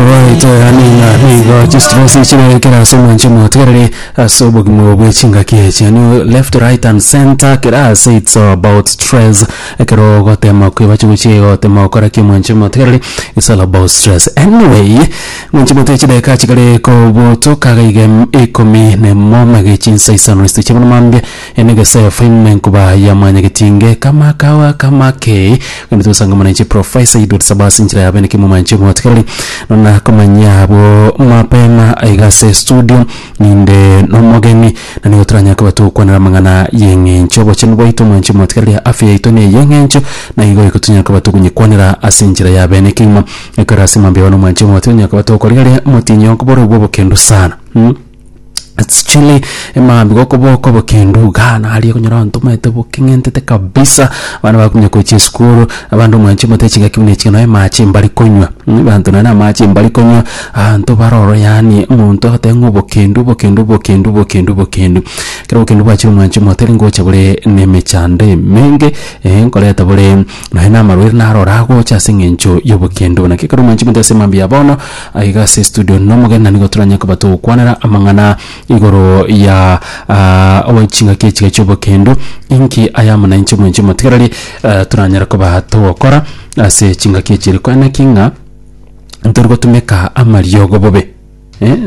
Oito yaani ng'a nigo chistress chirekera ase omonche motegereri ase obogima bwe chingaki echi yaani left right and center kera ase it's all about stress ekero ogotema kwebacha gochia gotema gokora ki omonche motegereri it's all about stress anyway omonche mote chidakika chikare kobutuka iga ikomi na emo mage chinsa isano isitiche bono mambia Ene gese faime nkoba yamanya getinge kama kawa kama kei gende togosanga muna inche profaisa Edward Sabasi inchera ya bene kimuma inche motikereri nona komanya abwo mapema aiga ase studio ninde nomogeni na nigo toranya koba togokwanera amang'ana yeng'encho obochenu bwaito mwanche motikereri afya yaito ne yeng'encho na igo iko tonyare koba togonyekwanera ase enchera ya bene kegima ekero ase mambia one mwanche motiga onye koba togokorigereria motinyo okoboro obwo obokendu sana. Actually emambi gokoboko bokendu gana aria kunyora onto maete bokeng'entete kabisa abana bakumya kochia esukuru abande omwanchi omate chigaki buna ichio naye mache mbari konywa mm abanto naye namache mbari konywa abanto bare oro yaani omonto agote ng'a obokendu obokendu obokendu obokendu obokendu ekero obokendu bwachire omwanchi omote nigo ogocha bore nemechando emenge nkoreta bore. Nonya namarwaire naro oragocha ase eng'encho y'obokende obo. Naki ekero mwanchi mote ase mambia ya bono, aiga ase estudio nomogeni na nigo toranye koba togokwanera amang'ana igoro ya oe chingaki echiga chi'obokendo. Inki ayamo na inche mwanchi omotigereri toranyare koba togokora ase chingaki echi? Ere koeneki ng'a torigotumeka amariogo bobe.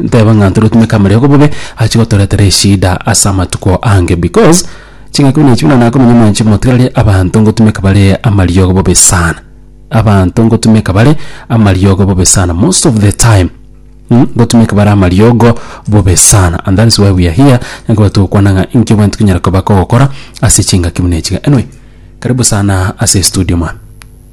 Nteba ng'a ntoretumeke amariogo bobe achi gotoretera eshida ase amatuko ange because ching'aki buna echi buna nakomanya mwanchi motigarari abanto ngotumeka bare amariogo bobe sana abanto ngotumeka bare amariogo bobe sana most of the time mh ngotumeka bare amariogo bobe sana and that is why we are here ekero togokwana ng'a inki obwenerete tonyare koba kogokora ase chingaki buna echi iga anyway karibu sana ase estudio mano.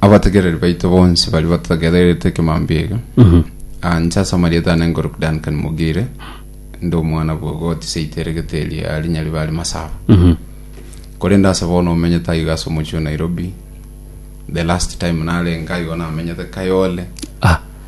Abategereri baito bonsi baria batagererete ekemambia eke, ah, inche ase amarieta aane nkorokwa Duncan Mogire, inde omwana bwe egoti seito eregete eria ya rinya ribare Masaba. Korende ase bono omenyete aiga ase omochie o Nairobi. The last time narenge aigo namenyete Kayole. Ah,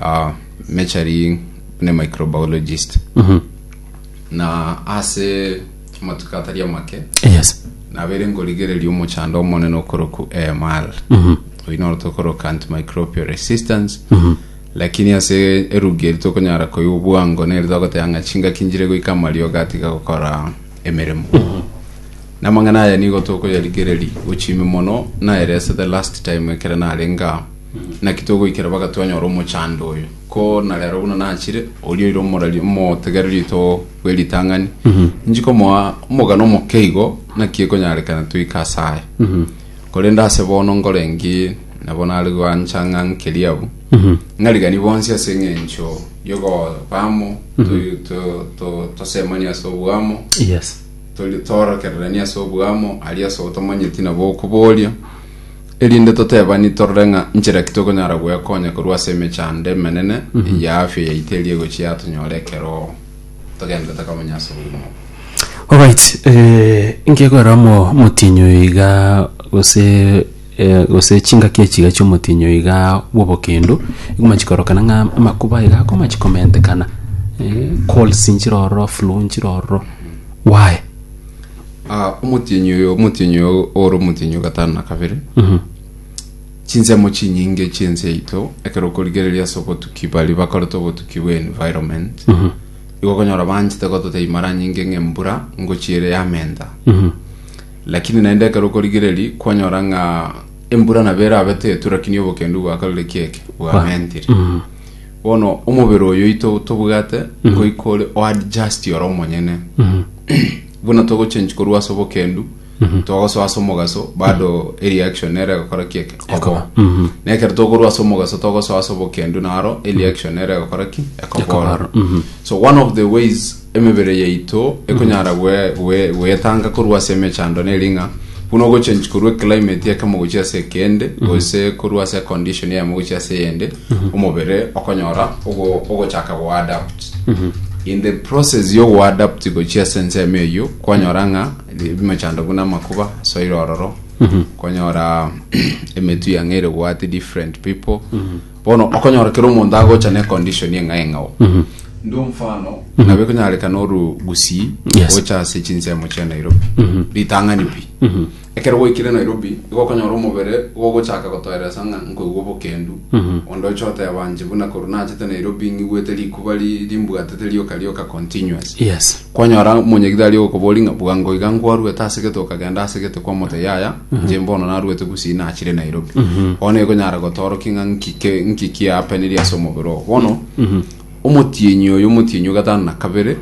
uh, measuring ne microbiologist Mhm. na ase amatuko atari amake yes nabere ngorigereria omochando omonene okoroku AMR Mhm. oyi noro tokoroka antimicrobial resistance lakini ase erugi eri tokonyara koyia obwango neri togoteba ng'a chingaki njire goika amario gatiga gokora emeremo na amang'ana aya nigo tokoyarigereria gochimi mono naerese the last time ekere narenga Naki togoikera mpaka twanyora omochando oyo? Ko na rero buna nachire, oria oire omorari omotegereria oito bwe ritang'ani, inchi komoa omogano omoke igo, naki ekonyarekana toike ase aye. Korende ase bono nkore nki? Nabo nare gwancha ng'a nkerie abwo, ng'ariganie bonsi ase eng'encho y'okoba amo, to- to- to- tosemanie ase oboamo, Yes. toli- toorokereranie ase oboamo, aria ase otomanyeti nabo okoboria, erinde totebani torore ng'a nchera ki tokonyara gwekonya korwa ase emechando emenene ya afia yaito eria egochia yatonyora ekero togenderete komenya ase obogima obo. Alright, eh, inki ekorera omo omotinyu iga gose eh, gose chingaki echiga chiomotinyu iga bw'obokendo igoma chikorokana ng'a amakuba iga akoma chikomentekana eh, colds nchire ororo flu nchire ororo why Ah, omotienyi oyo omotienyi oyo ore omotienyi o gatano na kabere chinsemo chinyinge chiense yaito ekero okorigereria ase obotuki bari bakorete obotuki bwa environment igo okonyora banchete gototebia mara nyinge ng'a embura ngochi ere yamenta lakini naende ekero okorigereria kwanyora ng'a embura nabo erabe tetu lakini obokendu bwakorire kieke bwamentire Bono omobere oyo oito tobwate ngoika ore oadjust ore omonyene buna togochange korwa ase obokendu twagosoa ase omogaso bado ereaction nero egokora ki eke ekoba na ekero tokorwa ase omogaso togosoa ase obokendu naro ereaction nero egokora ki ekobora so one of the ways Emebere yaito ekonyara goetanga korwa ase emechando na ering'a, buna ogochenchi korwa eclimate ekemo gochia ase ekende, gose korwa ase econdition eyemo gochia ase eyende, omobere okonyora ogochaka goadapt. In the process yo goadapt gochia ase ensemo eyio, kwanyora ng'a emechando buna amakuba, soil ororo, kwanyora emetu yang'a ere goati different people, Bono okonyora kera omonto agocha ne condition eng'ai eng'ao ndo mfano nabo ekonyarekana oru gusii Yes. gocha ase chinsemo chia nairobi ritang'ani pi ekero gwaikire nairobi igo okonyora omobere igo ogochaka gotoeresa ng'a nkoigwa obokendu onde oche oteba nche buna korwa nachete nairobi ng'igwete rikuba ri- rimbwatete rioka rioka continuous yes kwanyora monyegitari okobori ng'a bwango iga nkwarwete ase gete okagenda ase gete kwamotebia yaya inche mbono naruete gusii nachire nairobi bono ekonyara gotorokia ng'a nki ke- nki kiapeneria ase omobere oo bono omotienyi oyo omotienyi o gatano na kabere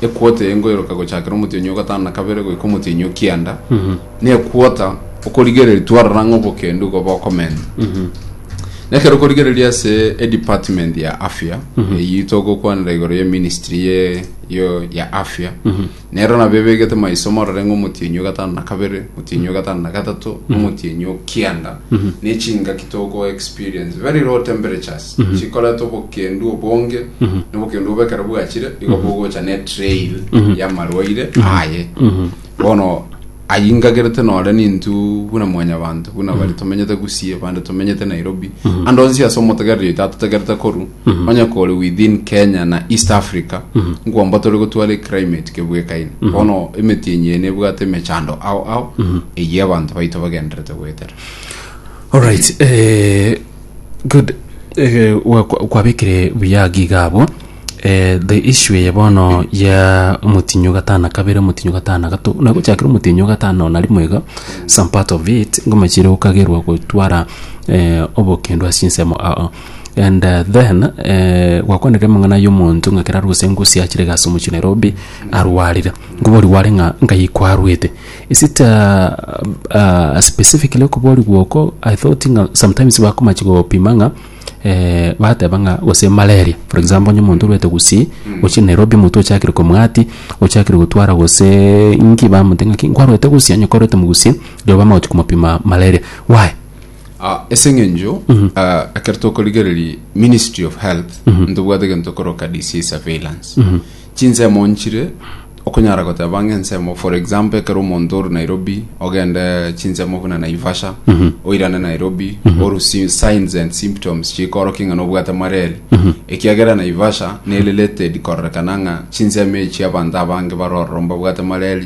ekwota eye nkoiroka gochakera omotienyi o gatano na kabere goika omotienyi o kianda na ekwota okorigereria twarora ng'a obokendu igo bokomenta na ekero okorigereria ase edepartment ya afya eyio togokwanera igoro ye ministry ye yo ya afya Nero nabwo ebegete maiso morore ng'a omotienyi o gatano na kabere, omotienyi o gatano na gatato, na omotienyi o kianda, ne chingaki toko experience, very low temperatures, chikoreta obokendu obonge, na obokendu obo ekero bwachire, igo bogocha ne trail ya marwaire aye. Bono ayio ingagerete nore nintwe buna mwanyabanto, buna bare tomenyete Gusii, abande tomenyete Nairobi, ande onsi ase omotegereria oito atotegerete korwa, onye kore within kenya na east africa nkwomba tore gotwara eclimate kebwekaine bono emetienyi eye nebwate emechando ao ao eyio abanto baito bagenderete goetera Alright, eh, good eh, wa- kwa- kwabekire buya giga abwo eh, the issue eye bono ya omotinyo gatana kabere omotinyo gatana gato nagochakire omotinyo gatano nari mwega some part of it ngomachire okagerwa gotwara eh, obokendo ase ensemo ao And then eh, gwakwanire amang'ana y'omonto ng'a kera aruse engusi achire gasi omochie Nairobi arwarire nkobori gware ng'a ngai kwarwete is it uh, uh, specifically okobori gwoko I thought ng'a sometimes bakomachi gopima ng'a eh, bateba ng'a gose malaria for example onye omonto orwete gusii ochie Nairobi omonto ochakire komwati ochakire gotwara gose inki bamote ng'aki nkwarwete gusii onye kwarwete mogusii riroba bamagochi komopima malaria why Ah, ase eng'encho ah, ekero tokorigereria ministry of health ntobwate egento tokoroka disease surveillance chinsemo nchire okonyara goteba ng'a ensemo for example ekero omonto ore nairobi ogende chinsemo buna naivasha oirane nairobi oru si- signs and symptoms chikorokia ng'a nobwate mareri ekiagera naivasha ne related kororekana ng'a chinsemo echi abanto abange barororo mbabwate mareri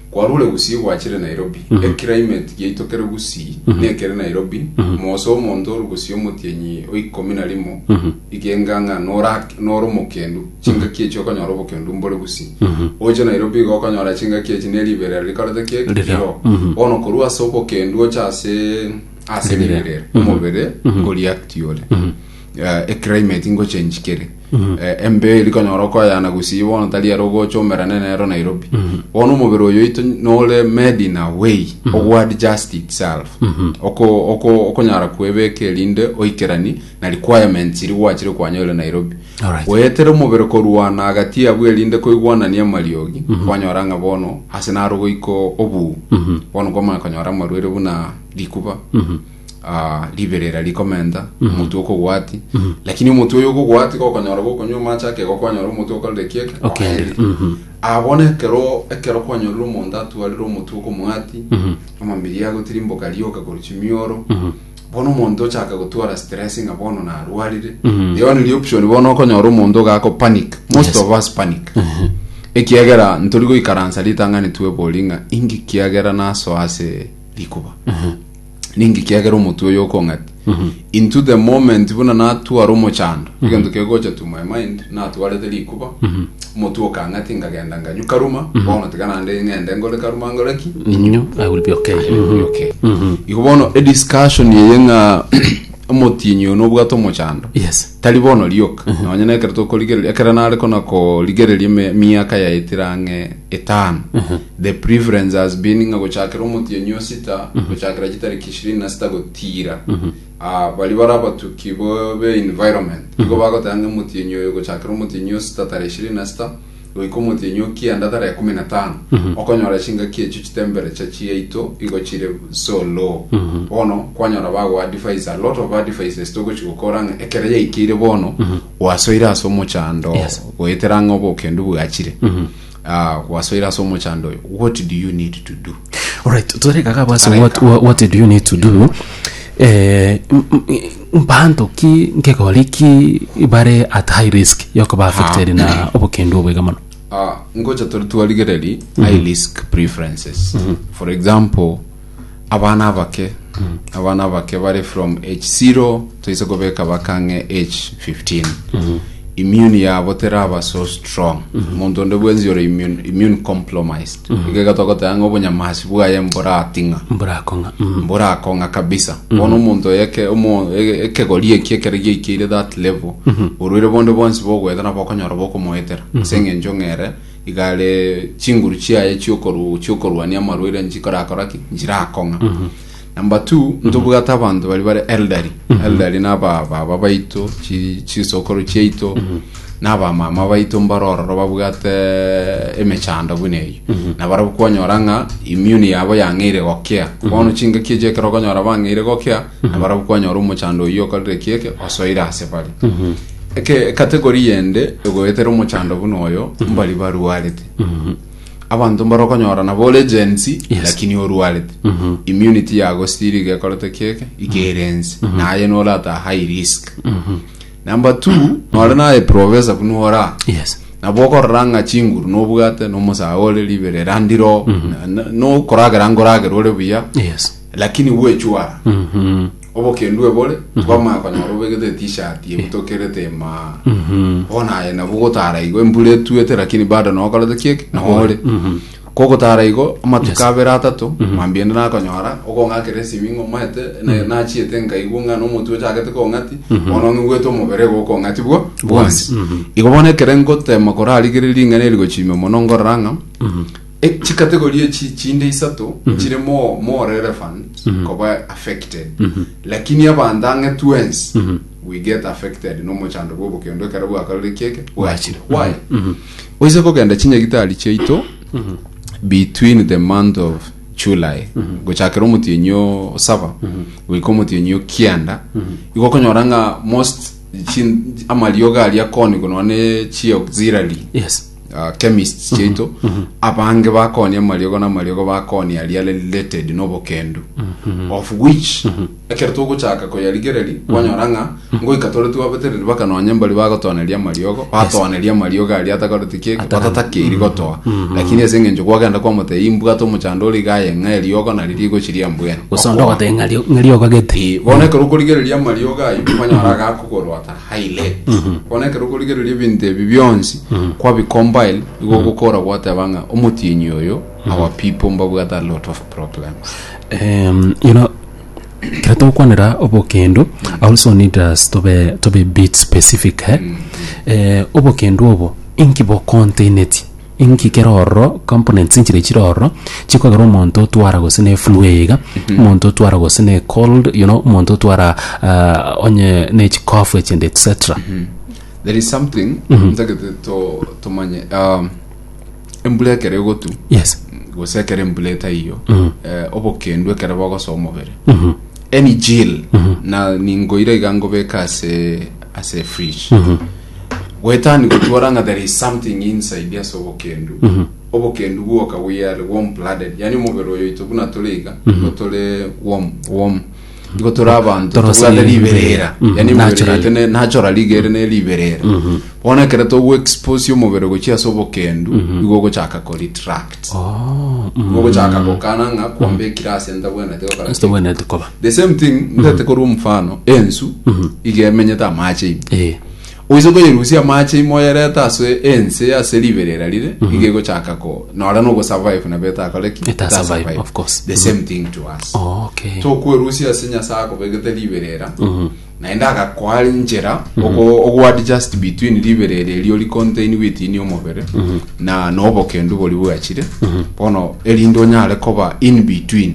Kwarure gusii gwachire Nairobi, eclimate giaito kere gusii nekere Nairobi, moose omonto oru gusii omotienyi o ikomi na rimo, igenga ng'a nora- nore omokendu, chingaki echi okonyora obokendu mbore gusii. Oche Nairobi iga okonyora chingaki echi ne riberera rikorete ki? Ririo. Ririo. Bono korwa ase obokendu oche ase ase riberera, omobere o react ore. Eh, eclimate ngochenji kere. Eh, embe eri konyora okoyana gusii bono tari ero ogocha omerane nero nairobi bono omobere oyo oito nore made in a way ogwad just itself Oko- oko- okonyara kwebeka erinde oikerani na requirements iri gwachire kwanyorire nairobi Alright. goetera omobere korwana agati abwo erinde koigwanania amariogi kwanyora ng'a bono ase naro goiko obuu bono kwamanya konyora amarwaire buna rikuba ah, riberera rikomenta omotwe okogwati lakini omotwe oyo okogwati gokonyora gokonywa amache ake gokwanyora omotwe okorire kieke Okerire, mhm. abona ekero ekero kwanyorire omonto atwarire omotwe okomwati amambiri agotirimboka rioka korwa chimioro bono omonto ochaka gotwara stress ng'a bono narwarire rero niri option bono okonyora omonto gako panic most of us panic ekiagera ntori goikaransa ritang'ani twebori ng'a inki kiagera nasoa ase rikuba ninki kiagera omotwe oyo okong'ati into the moment buna natwara omochando egento kegocha to my mind natwarete rikuba omotwe okang'ati nkagenda nkanyu karuma bono tiga nande ng'ende nkore karuma nkore ki Inyo, I will be okay. Okay. igo bono ediscussion eye ng'a omotienyi oyo nobwate omochando Yes. tari bono rioka nonya nekero tokorigereria ekero nare kona korigereria eme- miaka yaetire ang'e etano. The preference has been ng'a gochakera omotienyi o sita gochakera chitariki ishirini na sita gotiira ah, baria bare abatuki bo be environment nigo bagoteba ng'a omotienyi oyo gochakera omotienyi o sita tarehe ishirini na sita goika omotienyi o kianda tarehe ekumi na tano okonyora chingaki echio chitemperature chiaito igo chire so low bono kwanyora bagoa advice a lot of advices togochi gokora ng'a ekero yaikeire bono gwasoire ase omochando Yes. goetera ang'e obokendu bwachire Ah, gwasoire ase omochando oyo what do you need to do Alright, tore kaka basi Tore what, kaka. what, what do you need to do? Eh, m- m- mpanto ki nkegori ki bare at high risk yokoba affected na obokendu obwega mono. Ah, ngocha tore twarigereri high risk preferences for example abana abake abana abake bare from age 0 toise kobeka bakang'e age 15 immune yabo teraba so strong omonto onde bwensi ore immune, immune compromised igega togoteba ng'a obonyamasi bwaye mborating'a mburakong'a mm. mborakong'a kabisa bono omonto oyeke omo- e- ekegori eki ekero giaikeire that level orwire bonde bwonsi bogoeta nabo okonyora bokomoetera ase eng'encho ng'ere Igare chinguru chiaye chiokoru chiokorwania amarwaire nchikorakora ki nchirakong'a number two ntobwate abanto bari bare elderly elderly naba baba baito chi- chisokoro chiaito naba mama baito mbarororo babwate emechando buna eyo na barabwo kwanyora ng'a immune yabo yang'eire gokea bono chingaki echi ekero okonyora bang'eire gokea na barabwo kwanyora omochando oyio okorire kieke osoire ase bare Ecategory yende egoetera omochando buna oyo mbari barwarete abanto mbare okonyora nabo ore Gen Z Yes. lakini orwarete immunity yago still igekorete kieke igerense naye norata high risk number two nore naye professor buna ora yes nabo okorora ng'a chinguru nobwate nomosae ore ribe rirandiro nokoragera nkoragera ore buya yes lakini bwechwara Mhm. Obokendu ebore, twamanya konyora obegete etishirt eye butokerete emaa. Bono aye nabo ogotara igo, embura etuete lakini bado nao okorete ki eki? Nao ore. Kogotara igo, amatuko abere atato, mambia ende nakonyora, okong'akera esimi ng'a omanyete, na- nachiete nkaigwa ng'a nomotwe ochagete kong'ati, bono ng'igwete omobere igo okong'ati bwo- bwonsi. Igo bono ekere ngotema korarigereria ring'ana eri gochimia mono ngorora ng'a E, chikategori echi chinde isato chire more, more relevant koba affected lakini abanto ang'e twensi we get affected nomochando bwa obokendo ekero bwakarire kieke bwachire why oise kogenda chinyagitari chiaito between the month of July gochakera omotienyi o saba goika omotienyi o kianda igo okonyora ng'a most chin- amariogo aria koni kono ne chi auxiliary yes uh, chemists chiaito abange bakonia amariogo na amariogo bakonia aria are related n'obokendu of which ekero togochaka koyarigereria kwanyora ng'a ngoika tore twabetereri bakanonya mbari bagotoneria amariogo batoneria amariogo aria atakoreti keke batatakeiri gotoa lakini ase eng'encho kwagenda kwamotei imbwate omochando ore iga aye ng'a eriogo nari rigochiria mbwene gusonda Okoa. ogoteng'ario ng'eriogo gete Eh, bono ekero okorigereria amariogo ayo kwanyora agakogorota Highlight. Bono ekero okorigereria ebinto ebi bionsi kwabicombine igo ogokora gwateba ng'a omotienyi oyo our people mbabwate a lot of problems um, you know, kero togokwanera obokendo I also need us to be, to be bit specific eh? eh, obokendo obo inki bokontaineti Inki kere ororo, components inchire echire ororo, chikogera omonto otwara gose ne eflu eye iga, omonto otwara gose ne ekold, you know, omonto otwara eh, onye ne echikofu echinde etcetera. there is something ntagete to- tomanye um, embura ekero egotu Yes. gose ekero embura etaiyo eh, obokendu ekero bogosoa omobere any jill na ningoira iga ngobeka ase ase fridge Goetani gotwora ng'a there is something inside ase obokendu. Mhm. Obokendu bwoka we are warm blooded. Yani omobere oyo ito buna tore iga, mhm. igo tore warm, warm. Igo tore abantu, tobwate riberera. Mhm. Yani omobere oyo ne natural rigere ne riberera. Bona kere togu expose omobere gochia ase obokendu, igo gochaka ko retract. Mogochaka gokana ng'a kwambekire ase ntabwenete gokora ki. sitobwenete koba The same thing ndete korwa omofano ensu iga emenyete amache ime. Eh, Oise koyerusia amache ime oyerete ase ense ase riberera rire iga egochaka ko nora no ogosurvive nabo etakore ki? Eta survive, of course. The same thing to us. okay. tokwerusia ase nyasae akobegete riberera Naende agakoa enchera oko- okoadjust between ribere eria erio ricontain weight ini omobere na nobokendu bori bwachire bono erinde onyare koba in between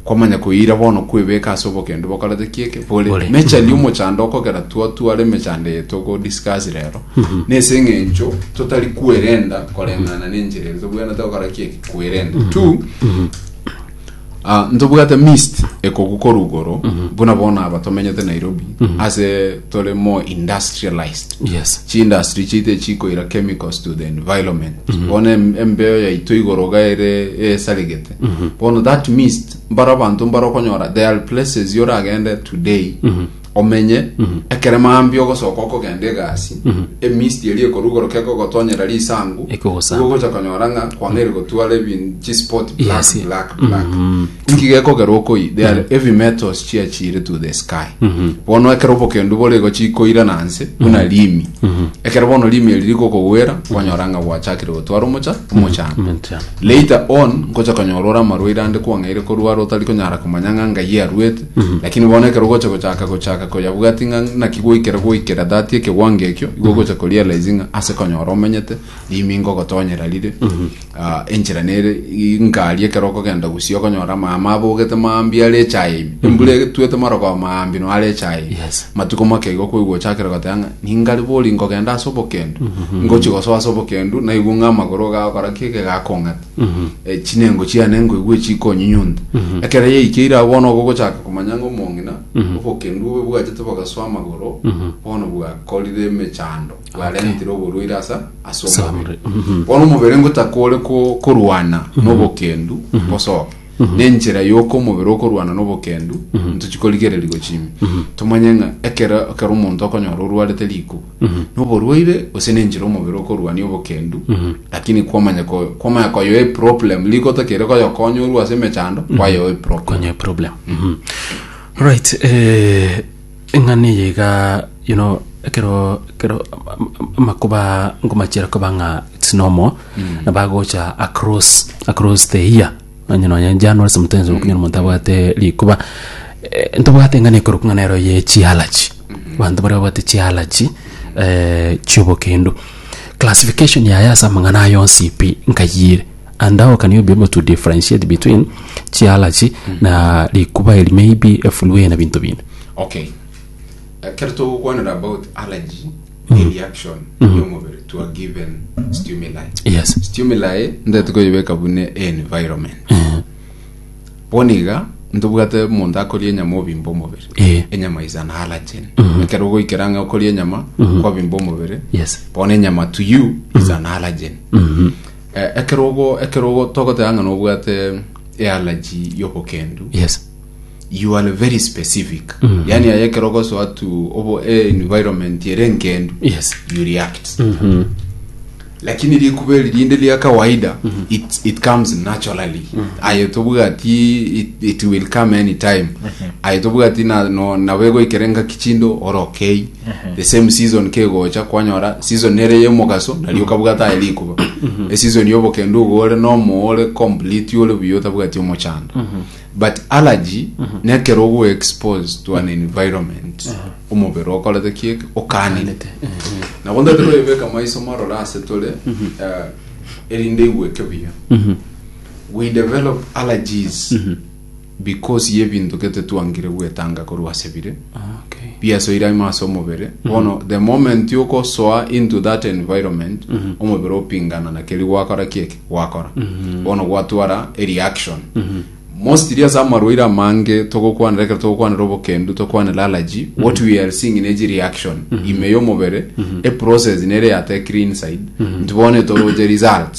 kwamanya koira bono kwebeka ase obokendu bokorete kieke bore Bore. mechani omochando okogera twatwara emechando eye togodiscuss rero nese eng'encho totari kwerenda koreng'ana nenchera ere tobwenerete gokora kieke kwerenda two Ah, ntobwate mist ekogu koru igoro buna bono aba tomenyete nairobi ase tore more industrialized yes chiindustry chiite chikoira chemicals to the environment bono em- embeo yaito igoro gaere esaregete bono that mist mbaro abanto mbaro okonyora there are places yoragende today omenye ekere mambia ogosoka okogenda egasi emisti eria ekorugoroka ekogotonyera risangu Ekogosamba. igo ogocha konyora ng'a kwang'eire gotwara ebin- chispot black Yes. black black inki gekogera okoi they are heavy metals chiachire to the sky bono ekero obokendu bore igo chikoira na nse buna rimi ekero bono rimi eri rigokogwera kwanyora ng'a gwachakire gotwara omocha omochando Omochando. later on nkocha konyora ore amarwaire ande kwang'eire korwara otari konyara komanya ng'a ngai arwete Lakini bono ekero ogocha gochaka gochaka koyabwati ng'a naki gwaikera gwaikera that ekegwango ekio igo ogocha korealize ng'a ase konyora omenyete rimingo ogotonyera rire Ah, enchera nere i- ngari ekero okogenda gusii okonyora mama abogete mambia are echaye ime embura etuete marogoba mambia no are echaye ime Yes. matuko make igo koigwa ochakire goteba ng'a ningari bori nkogenda ase obokendu ngochi gosoa ase obokendu naigwe ng'a amagoro gagokora ki egegakong'ata chinengo chiane nkoigwe chikonyunyunta ekero yaikeire agwo bono ogo ogochaka komanya ng'a omong'ina obokendu bobe bwachete bogasoa amagoro bono bwakorire emechando bwarentire oborwaire asa ase omobere bono omobere ngotaka ore ko- korwana nobokendu bosoke nenchera yoka omobere okorwana nobokendu ntochi korigereria gochia ime tomanye ng'a ekero ekero omonto okonyora orwarete rikuba noborwaire gose nenchera omobere okorwania obokendu lakini kwamanya ko- kwamanya koyoa eproblem riko otakere koyokonya orwe ase emechando kwayoa eproblem Konye problem. Mhm. Alright, eh, Eng'ana eye iga you know ekero ekero am- am- amakuba nkomachera koba ng'a it's normal nabagocha across across the year onye nonye january sometimes okonyora omonto abwate rikuba eh, ntobwate eng'ana ekorokwa ng'a nero ye chialachi abanto baria babwate chialachi eh, chiobokendo classification yaye ase amang'ana aya onsi pi nkayiire And how can you be able to differentiate between chialachi na rikuba eri maybe efulue na binto binde okay ekero togokwanera about allergy ni reaction y'omobere to a given stimuli yes stimuli ndete koyebeka bune environment bono iga ntobwate omonto akoria enyama obimba omobere Eh. enyama is an allergen ekero ogoikera ng'a okoria enyama kwabimba omobere Yes. bono enyama to you is an allergen Eh, ekerogo ekerogo togoteba ng'a nobwate ealaji y'obokendu yes you are very specific mm. yani aye ekerogo so atu obo e environment ere nkendu yes you react mm-hmm. lakini rikuba eri rinde ria kawaida mm-hmm. it, it comes naturally mm-hmm. aye tobwati it, it will come any time mm-hmm. aye tobwati na, no, nabegoikerenga kichindo orokei the same season kegocha kwanyora season nere yemogaso nari okabwata aye rikuba eseason yobokendo ogo ore nomo ore complete ore buya otabwati omochando but allergy nekero ogo expose to an environment omobere okorete kieke okanete nabo ndatiro ebeka maiso morore ase tore eh, erinde igweke buya we develop allergies Because y'ebinto gete twangire gwetanga korwa ase bire Okay. biasoire aima ase omobere bono the moment ogosoa into that environment omobere opingana na keri gwakora kieke gwakora bono gwatwara ereaction mostly ase amarwaire amange togokwanera ekero togokwanera obokendu tokwanera allergy what we are seeing nechi reaction ime y'omobere eprocess nere yatekire inside nti bono etoroche results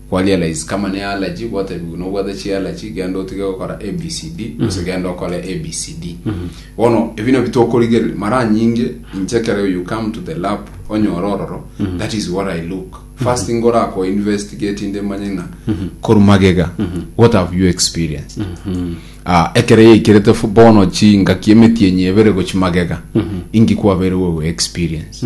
Kwa realize kama ne allergy gwaterigwe no bwate chi allergy genda otige gokora ABCD gose genda okore ABCD bono ebi nabio tokorigereria mara nyinge inche kere you come to the lab onyore ororo that is what I look first thing ora ko investigate inde manye ng'a koru magega what have you experienced Ah, ekero yaikerete fu- bono chingaki emetienyi ebere gochi magega ingi kwabeire wewe experience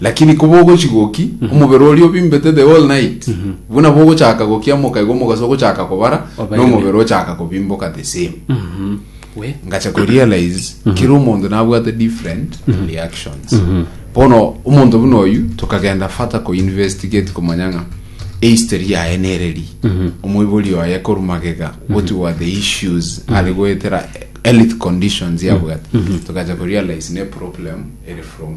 Lakini kobogochi goki omobere oria obimbete the whole night buna bogochaka gokiamoka igo omogasa ogochaka kobara Obaire. nomobere ochaka kobimboka the same we ngacha korealize kera omonto nabwate different reactions bono omonto buna oyu tokagenda fata koinvestigate komanya ng'a ehistory yaye nereri omoibori oye koru magega what were the issues are goetera health conditions yabwate tokacha korealize ne problem ere from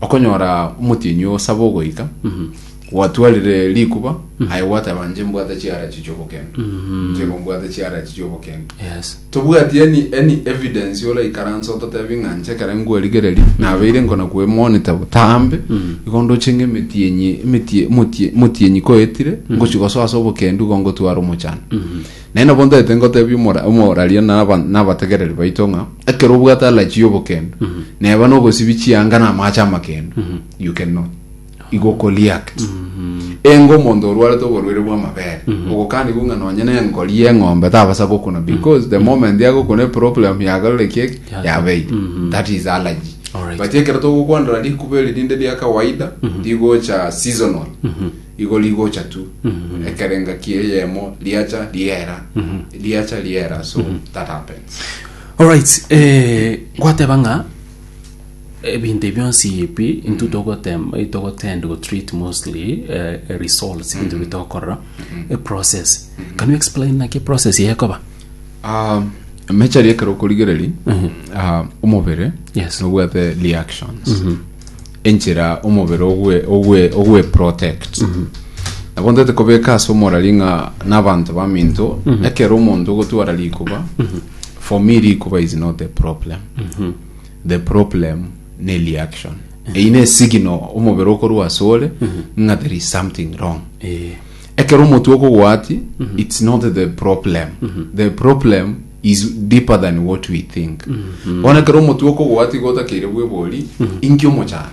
Okonyora omotienyi osaba ogoika, gwatwarire rikuba, aye gwateba, inche mbwate chiarachi chi'obokenda. Inche igo mbwate chiarachi chi'obokenda. Yes. Tobwati any, any evidence oraikaranse ototebie ng'a inche ekero nkwerigereria nabeire nkona kwemonita botambe igo ndoche ng'a emetienyi emetie- motie- motienyi koetire ngochi gosoa ase obokendu igo ngotwara omochando Naende nabo ntaete ngoteebia omora- omoraria na aba- na abategereri baito ng'a ekero obwate alachi y'obokendo, neba nogosibi chianga na amaache amakendo, you can know. Igo okoriact. Enga omonto orwarete oborwaire bw'amabere, ogokanigwa ng'a nonye nenkori y'eng'ombe tabasa gokuna because the moment agokuna eproblem yagarire ki eki, Yasa. yabeire. That is allergy. Alright. But ekero togokwanera rikuba eri rinde ria kawaida, rigocha seasonal. Igo rigocha tu ekero engaki eyemo riacha riera riacha riera so that happens Alright, eh, gwateba ng'a ebinto ebi bionsi ebi intwe togotem- eh, togotend go treat mostly eh, results ebinto bi tokorora a process can you explain naki a process yekoba Ah, mechari ekero okorigereri ah, omobere Yes. nobwate reactions enchera omobere ogwe ogwe ogwe protect nabo ntete kobeka ase omorari ng'a nabanto baminto ekero omonto ogotwara rikuba for me rikuba is not the problem the problem ne reaction eyi ne signal omobere okorwa ase ore ng'a there is something wrong ekero omotwe okogwati it's not the problem the problem is deeper than what we think bono ekero omotwe okogoa tiga otakeire bwebori inki omochando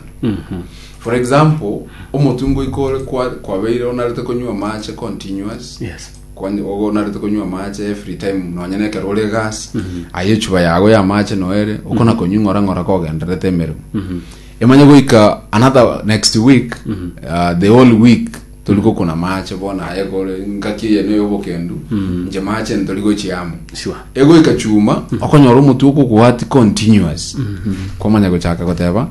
for example omotwe ngoika ore kwa- kwabeire onarete konywa amache continuous Yes. Kwani- ogo onarete konywa amache every time nonya na ekero ore egasi aye echuba yago ya amache noere okona konywa ng'ora ng'ora kogendererete emeremo emanye goika another next week uh, the whole week Tori gokuna maache bono aye kore engaki eyene y'obokendu, inche maache ntori gochia amo. Sure. Egoika chuma, okonyora omotwe okogwati continuous. Kwamanya gochaka goteba,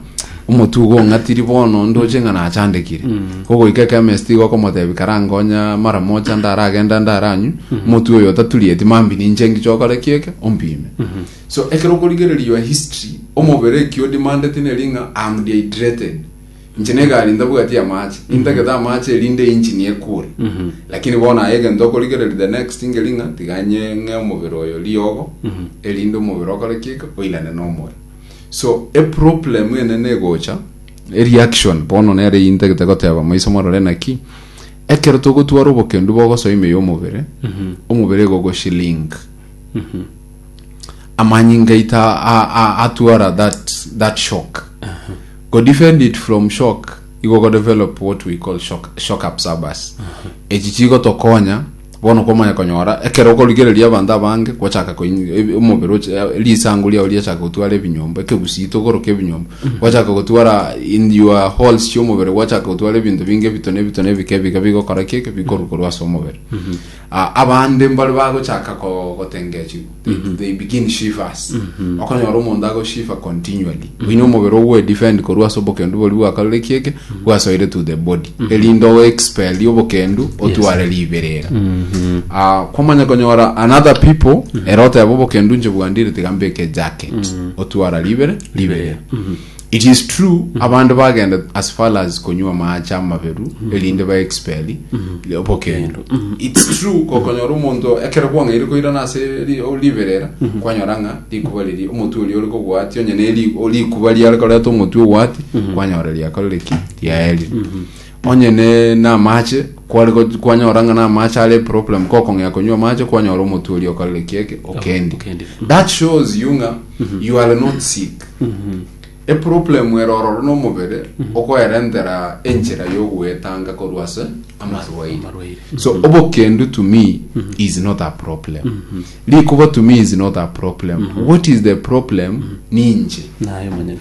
omotwe igo ong'atiri bono ndoche ng'a nachandekire. Ogoika ekemist igo okomotebi karangonya mara mocha ndaragenda ndaranywe, omotwe oyo otaturieti mambia ninche ngiche okore ki eke, ompime. So ekero okorigereria your history, omobere eki o demandeti neri ng'a I am dehydrated. Inche negari ntabwati amache nintagete amache erinde engine ekure lakini bono aye egento okorigereria the next ngeri ng'a tiganye ng'e omobere oyo riogo erinde omobere okore kika oirane nomore so eproblem enene egocha ereaction bono nere eyio intagete goteba maiso morore naki ekero togotwara obokendu bogosoa ime ya omobere omobere egogoshiling amanyinga aito a- a- a- atwara that that shock go defend it from shock igo go develop what we call shock, shock absorbers echi chigo tokonya bono komanya konyora ekero okorigereria abanto abange gochaka koin- e- omobere oche- e- risango riao riachaka gotwara ebinyomba ekegusito koroka ebinyomba gwachaka gotwara in your halls chi'omobere gwachaka gotwara ebinto binge ebito na ebito na ebike ebike bigokora ki eke bikorukorwa ase omobere Ah, abande mbare bagochaka ko- gotengechwa they, they begin shivers okonyora omonto agoshiva continually oine omobere ogwedefend korwa ase obokendu bori bwakarore kieke bwasoire to the body erinde oexpel obokendu otware riberera Ah, kwamanya konyora another people ere oteba obokendu nche bwandire tiga mbeke jacket otwara ribere riberera It is true abande bagenda as far as konywa amaache amaberu erinde ba expel obokendo its true kokonyora omonto ekero kwang'aire koirana ase ri- o- riberera kwanyora ng'a rikuba riria omotwe oria ore kogwati onye ne ri- o- rikuba riare koreta omotwe ogwati kwanyora riakorire ki riaerire Onye ne, namache, kware go, kwanyora ng'a namache are problem, kokong'ea konywa amache, kwanyora omotwe oria okarire ki eke, okendi. okendi. That shows you ng'a you are not sick. Eproblem ere ororo nomobere okoerentera enchera yogoetanga korwa ase amarwaire. Amarwaire. So obokendu to me is not a problem. Rikuba to me is not a problem. What is the problem? Ninche. Naye omonyene.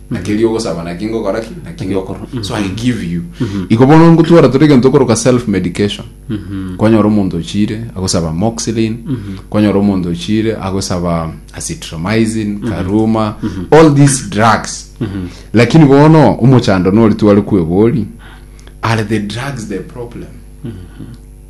na keria ogosaba naki ngokora ki naki ngokora so i give you iko bono ngotwara tore egento okoroka self medication kwanyora omonto ochire agosaba moxilin kwanyora omonto ochire agosaba acitromycin karuma all these drugs lakini bono omochando nori tware kwebori are the drugs the problem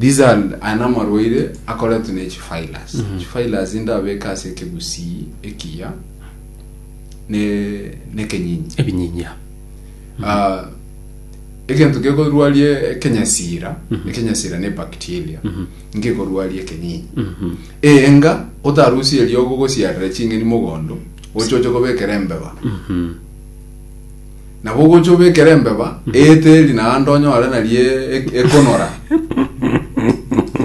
These are aya namarwaire akoretwe ne chivirus chivirus inde abeke ase ekegusii ekiya ne nekenyinyi ebinyinyia Ah, egento gekorwarie ekenyasira ekenyasira ne bacteria ngekorwarie ekenyinyi enga otarusie eriogo gosiarera ching'eni mogondo ochoche kobekera embeba Nabo ogocha obekere embeba eeteri naende onyore naria e- ekonora.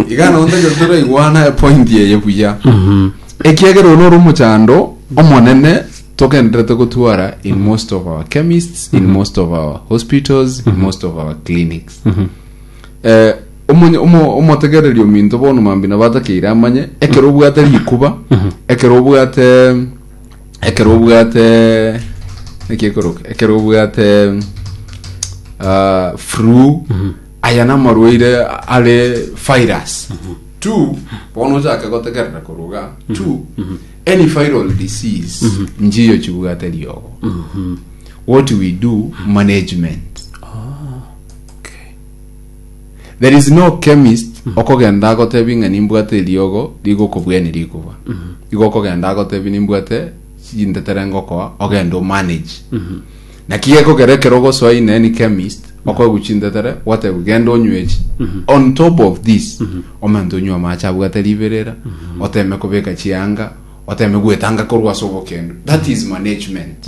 Iga nonya tari- toraigwana epointi eye buya. Ekiagera oyo nore omochando omonene togenderete gotwara in most of our chemists, in most of our hospitals, in most of our clinics. Eh, omonye- omo- omotegereri ominto bono mambia nabo atakeire amanye ekero obwate rikuba ekero obwate ekero obwate naki ekoroka ekero obwate ah, flu aya namarwaire are virus two bono ochake gotegerera koruga two any viral disease njiyo chibwate riogo what we do management There is no chemist okogenda agotebi ng'a nimbwate eriogo rigokobwenia rikuba. Igo okogenda agotebi nimbwate chintetere ngokoa ogende omanage. Naki gekogera ekero ogosoa ine ni chemist okoegwa chintetere gwategwa genda onywe echi. On top of this omonto onywa amache abwate riberera oteme kobeka chianga oteme gwetanga korwa ase obokendu. That is management.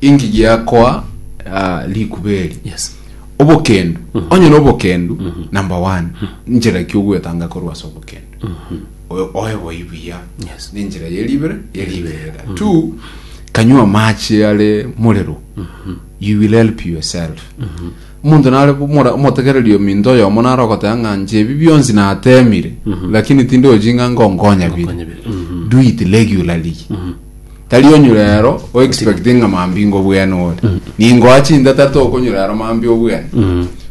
Inki giakoa ah, rikuba eri? Yes. obokendu onye na obokendu number one njira ki ogwetanga korwa ase obokendu O- oe boi buya Yes. ninjira yeribere yeribera two kanywa amache are morero you will help yourself omonto nare mora- omotegereri ominto oyomo nare ogoteba ng'a nche ebi bionsi natemire lakini tindochi ng'a ngonkonya bire Ngonkonya bire. Mhm. do it regularly Tari onyure ero o expect ng'a mambinga obwene ore. Ningoa chintata tokonyura ero mambia obwene.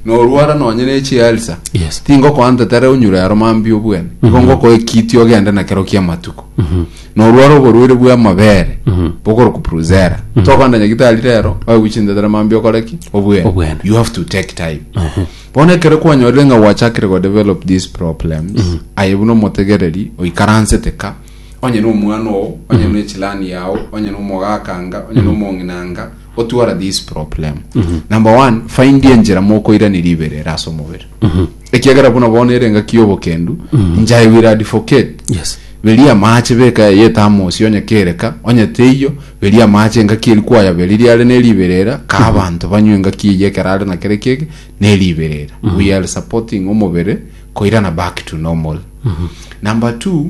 Norwara nonye ne chi ulcer. Yes. Tingokoa ntata ere onyure ero mambia obwene. Igo ngokoa ekiti ogende na kero kia matuko. Norwara oborwaire bwa amabere. Bokorokwa Bruzera. Tokogenda nyagitari rero oegwe chintata ere mambia okore ki? Obwene. Obwene. You have to take time. Bono ekero kwanyorire ng'a gwachakire go develop these problems, aye buna omotegereri oikaransete ka, onye nomwana oo onye mm-hmm. nechilani yao onye nomogakanga onye mm-hmm. nomong'inanga otwara this problem mm-hmm. number one find enjera mokoirani ribere rasa omobere ekiagera buna bona ere engaki yobokendu njai will advocate yes beria amache beka yetamosi onye kereka onye teiyo beria amache engaki eri kwaya beri riare neriberera ka abanto banywe engaki eye kerare na kere kege neriberera we are supporting omobere koirana back to normal number two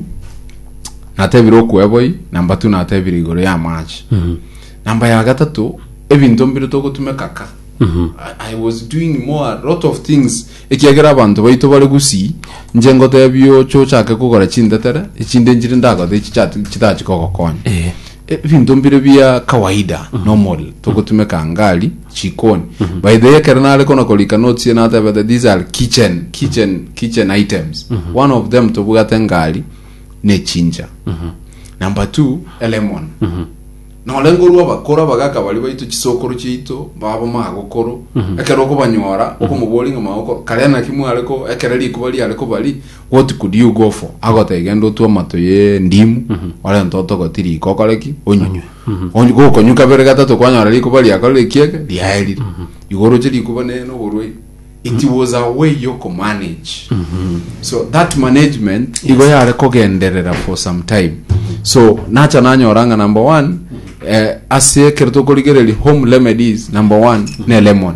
natebire okweboi number two natebire igoro ya amache number ya gatato ebinto mbire togotumeka ka I- i was doing more a lot of things ekiagera abanto baito bare gusii nche ngotebia oche ochake kogora chintetere echinde nchire ndagothe echi chati- chitachi kogokonya Eh. ebinto mbire bia kawaida normal togotumeka ngari chikoni by the ekero nare kona korika notes ye natebete these are kitchen kitchen kitchen items one of them tobugate ngari ne chinja number two elemon nore ngorwa abakoro abagaka bari baito chisokoro chiaito babo magokoro ekero okobanyora okomobori ng'a magokoro kare naki mware ko ekero rikuba riare kobari what could you go for agoteba genda otwe amato ye ndimu orente otogoti riko okore ki onywe Onye gokonywa kabere gatato kwanyora rikuba riakorire ekiege riaerire. Igo oroche rikuba ne noborwaire. It was a way yo ko manage. So that management igo yare kogenderera for some time. So nacha nanyora ng'a number one eh, ase ekero tokorigereria home remedies number one ne lemon.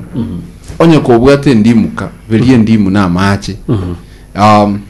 Onye kobwate endimu ka berie endimu na amache. Um,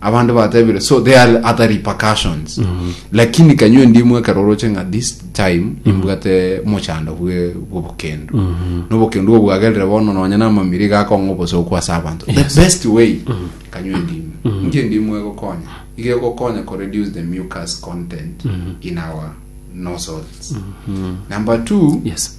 abande batebire so they are other repercussions lakini kanywe ndimwe ekero oroche ng'a this time imbwate mochando bwe bw'obokendo n'obokendo obwo bwagerire bono nonya namamiri gakong'a obosooku ase abanto the best way kanywe ndimwe inki ndimwe egokonya iga egokonya ko reduce the mucus content in our nozzles number two yes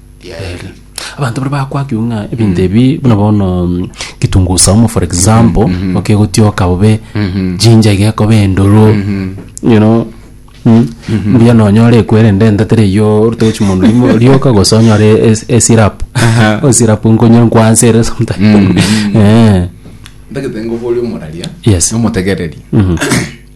Yaeli. Abanto baria bakwakigwe ng'a ebinto ebi buna bono mm, kitungu saumu for example okegotioka bobe jinja iga ekoba endoro you know mm, mbuya nonyore ekwerende ente teri eyio orute gochi mondo rimo- rioka gose onyore es- esirap Aha. esirap nkonye nkwanse ere sometime Eh, Ndagete ngoboria omoraria. Yes. Nomotegereri.